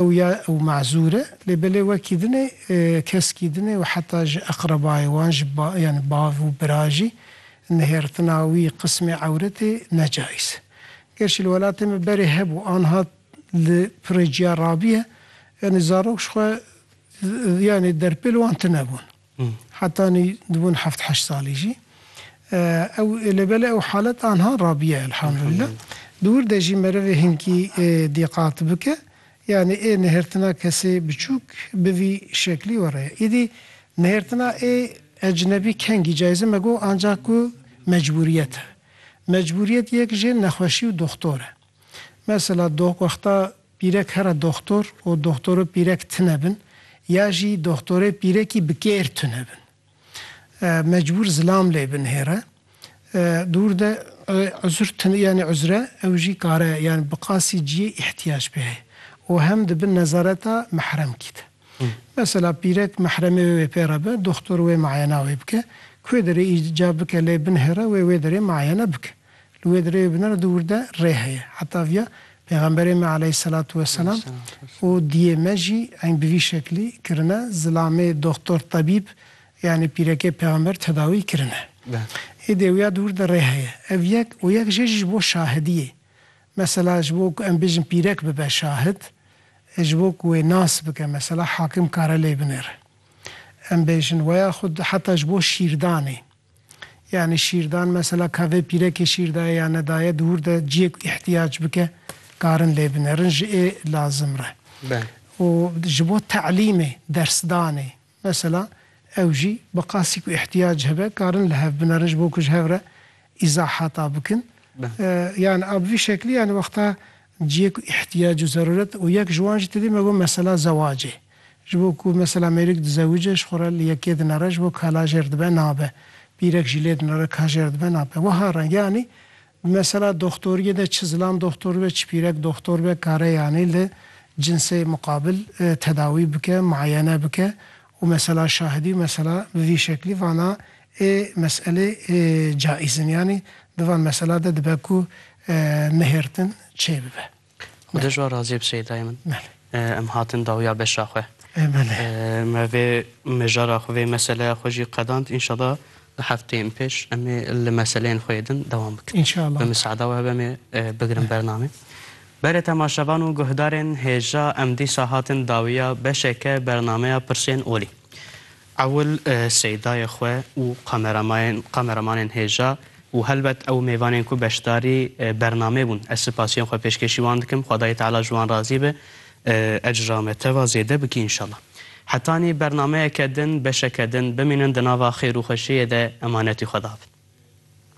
Ew ya ew mezûr e lê belê wekî din e, keskî din e û heta ji eqrebayê wan ji yani bav û bira jî nihêrtina wî qismê ewretê ne cayîz e. Gerşî li welatê me berê hebû anha li pirê ciya rabiye yani zarok ji xwe yani derpêl wan tune bûn. Hetanî dibûn heft heşt salî jî. Ew lê belê ew halet anha rabiye elhamdulila. Di wir de jî merivê hinkî dîqat bike yanî ê nihêrtina kesê biçûk bi vî şeklî were ye. Îdî nihêrtina ê ecnebî kengî cayîze me got anca ku mecbûriyet e. Mecbûriyet yek jê nexweşî û doxtor e. Mesela wexta Pîrek here doxtor û doxtoro pîrek tune bin ya jî doxtorê pîrekî bi kêr tune bin. Mecbûr zilam lê bin hêre. Dûr de uzr tune yanî uzre ew jî kare yanî bi qasî ciyê îhtîyac pê heye û hem di bin nezareta mihremkî de. Mesela pîrek mihremê wê wê pê re be, doxtor wê miayena wê bike. Kuê derê îcab bike lê bin hêre wê wê derê miayene bike. Li wê dirêjê bi nirx dûr de rê heye. Heta viya Pêxemberê me aleyhîsselatu weselam û diyê me jî eng bi vî şeklî kirine, zilamê doxtor, tebîb, yanî pîrekê Pêxember tedawî kirine. Êdî wiya dûr de rê heye. Ev yek û yek jê jî ji bo şahidiyê. Mesela ji bo ku em bêjin pîrek bibe şahid, ji bo ku wê nas bike mesela hakim kare lê binêre. Em bêjin weya xwe heta ji bo şîrdanê. Yanî şîrdan mesela ka vê pîrekê şîr daye ya nedaye di hûr de ciyê ku îhtiyac bike karin lê binerin ji ê lazim re. Û ji bo telîmê, dersdanê mesela ew jî bi qasî ku îhtiyac hebe karin li hev binerin ji bo ku ji hev re îzahata bikin. Yanî a bi vî şeklî yanî wexta Cihê ku îhtîyac û zerûret û yek ji wan jî tedî me got mesela zewacê. Ji bo ku mesela mêrûk dizewice ji xwe re li yekê dinere ji bo kala jêr dibe nabe. Bîrek jî lê dinere ka jêr dibe nabe. Wiha re yanî di mesela doxtoriyê de çi zilam doxtor be çi pîrek doxtor be kare yanî li cinsê muqabil tedawî bike, muayene bike Û mesela şahidî û mesela bi vî şeklî vana ê meselê ê caîz in. Yanî di van mesela de dibe ku nihêrtin çê bibe. Xwedê ji wan razî be Şeydayê min. Belê. Em hatin dawiya beşa xwe. Ê belê. Me vê mijara xwe vê meseleya xwe jî qedand. Înşallah di hefteyên pêş em ê li meseleyên xwe yê din dewam bikin. Înşallah. Bi miseada we hebe em ê bigirin bernamê. Berê temaşevan û guhdarên hêja emdîşa hatin dawiya beşeke bernameya Pirşên Olî. Ewil şeydayê xwe û kameramanên hêja û helbet ew mêvanên ku beşdarî bernamê bûn ez sipasiyên xwe pêşkêşî wan dikim xwedayê teala ji wan razî be ecra me teva zêde bike înşallah. Hetanî bernameyeke din beşeke din bimînin di nava xêr û xweşiyê de emanetî xwe dabin.